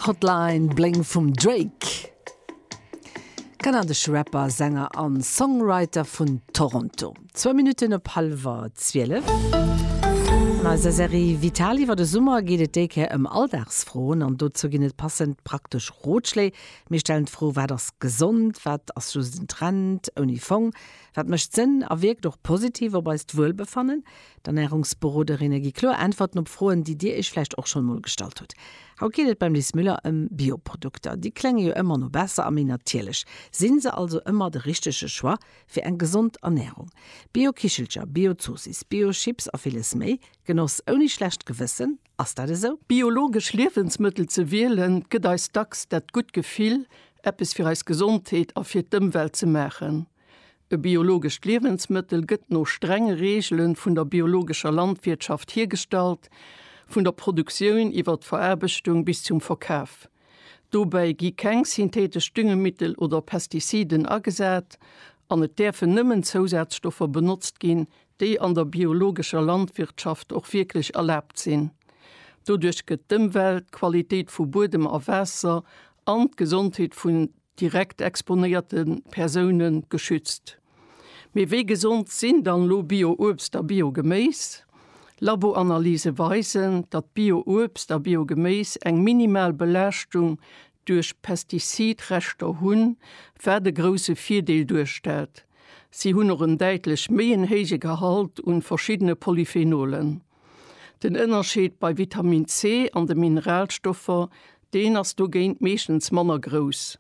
Hotline Bling vum Drake, kanadesch Rapper, Sänger a Songwriter vun Toronto. Zwou Minutten op hallwer zwielef. An eiser Serie Vital iwwer de Summer geet et déi Kéier ëm Alldagsfroen. An dozou ginn et passend praktesch Rotschléi. Mir stellen d'Fro, Wat ass gesond? Wat ass just en Trend ouni Fong? Wat mécht Sënn a wierkt och positiv op eist Wuelbefannen? D'Ernärungsberoderinne gi kloer Äntwerten op Froen, déi Dir Iech vläicht och schonn emol gestallt hutt. Haut geet et beim Lis Müller ëm Bioprodukter. Déi klénge jo ëmmer no besser a méi natierlech. Sinn se also ëmmer de richtege Choix fir eng gesond Ernärung? Bio-Kichelcher, Bio-Zoossiss, Bio-Chips a villes méi. Genoss ouni schlecht Gewëssen, ass dat esou? Biologesch Liewensmëttel ze wielen, gëtt eis dacks dat gutt Gefill, eppes fir eis Gesondheet a fir d'Ëmwelt ze maachen. E biologescht Liewensmëttel gëtt no strenge Reegele vun der biologescher Landwirtschaft hiergestallt, vun der Produktioun iwwer d'Veraarbechtung bis zum Verkaf. Dobäi gi keng syntheetesch Düngemittel oder Pestiziden agesat an et däerfen nëmmen Zousazstoffer benotzt ginn, déi an der biologescher Landwirtschaft och wierklech erlaabt sinn. Doduerch gëtt d'Ëmwelt, d'Qualitéit vu Buedem a Waasser an d'Gesondheet vun direkt exponéierte Persoune geschützt. Mee wéi gesond sinn dann elo Bio-Uebst a Bio-Geméis? Laboanalyse weisen, datt Bio-Uebst a Bio-Geméis eng minimal Belaaschtung duerch Pestizid-Reschter hunn, wat e grousse Virdeel duerstellt. Si hunn och en däitlech méi en héije Gehalt un verschiddene Polyphenolen. Den Ënnerscheed bei Vitamin C an de Mineralstoffer, deen ass dogéint meeschtens manner grouss.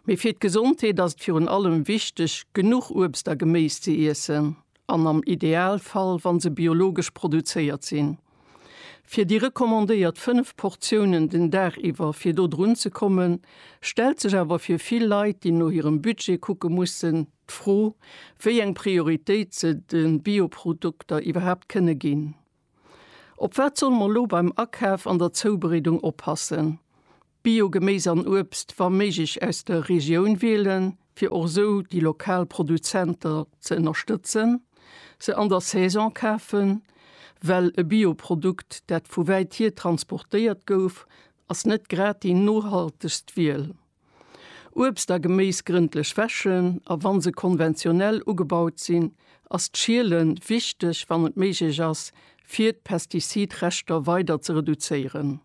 Mee fir d'Gesondheet ass et virun allem wichteg, genuch Uebst a Geméis ze iessen, an am Idealfall, wa se biologesch produzéiert sinn. Fir déi recommandéiert 5 Portiounen den Dag iwwer fir do drun ze kommen, stellt sech awer fir vill Leit, déi no hirem Budget kucke mussen, D'Fro, wéi eng Prioritéit se de Bioprodukter iwwerhaapt kënne ginn. Op wat solle mer elo beim Akaf an der Zoubereedung oppassen? Bio-Geméis an Uebst wa méiglech aus der Regioun wielen, fir och esou déi lokal Produzenter ze ënnerstëtzen, se an der Saison kafen, well e Bioprodukt, dat vu wäit hier transportéiert gouf, ass net grad déi nohaltegst Wiel. Uebst a Geméis grëndlech wäschen a wann se konventionell ugebaut sinn, ass d'Schielen wichteg wann et méiglech ass fir d'Pestizidreschter weider ze reduzéieren.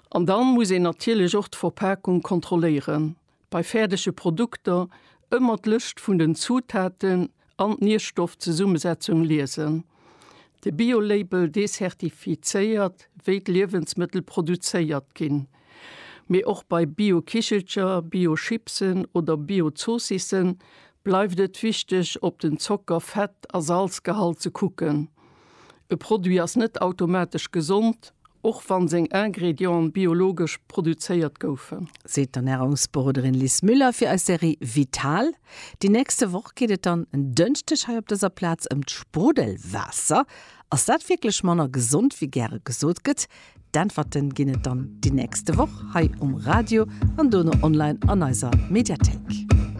An dann muss een natierlech och d'Verpakung kontrolléieren. Bei fäerdege Produkter ëmmer d'Lëscht vun den Zutaten an d'Nierstoffzesummesetzung liesen. De Bio-Label dezertifizéiert, wéi d'Liewensmëttel produzéiert ginn. Mee och bei Bio-Kichelcher, Bio-Chipsen oder Bio-Zoossissen bleift et wichteg, op den Zocker-, Fett a Salzgehalt ze kucken. E Produit ass net automatesch gesond, och wann seng Ingredienten biologesch produzéiert goufen. Seet d'Ernärungsberoderin Liz Müller fir eis Serie Vital. Déi nächste Woch geet et dann en Dënschdeg hei op dëser Plaz ëm d'Sprudelwaasser. Ass dat wierklech manner gesond wéi gäre gesot gëtt? D'Äntwerte ginn et dann déi nächste Woch hei um Radio an dono online an eiser Mediathéik.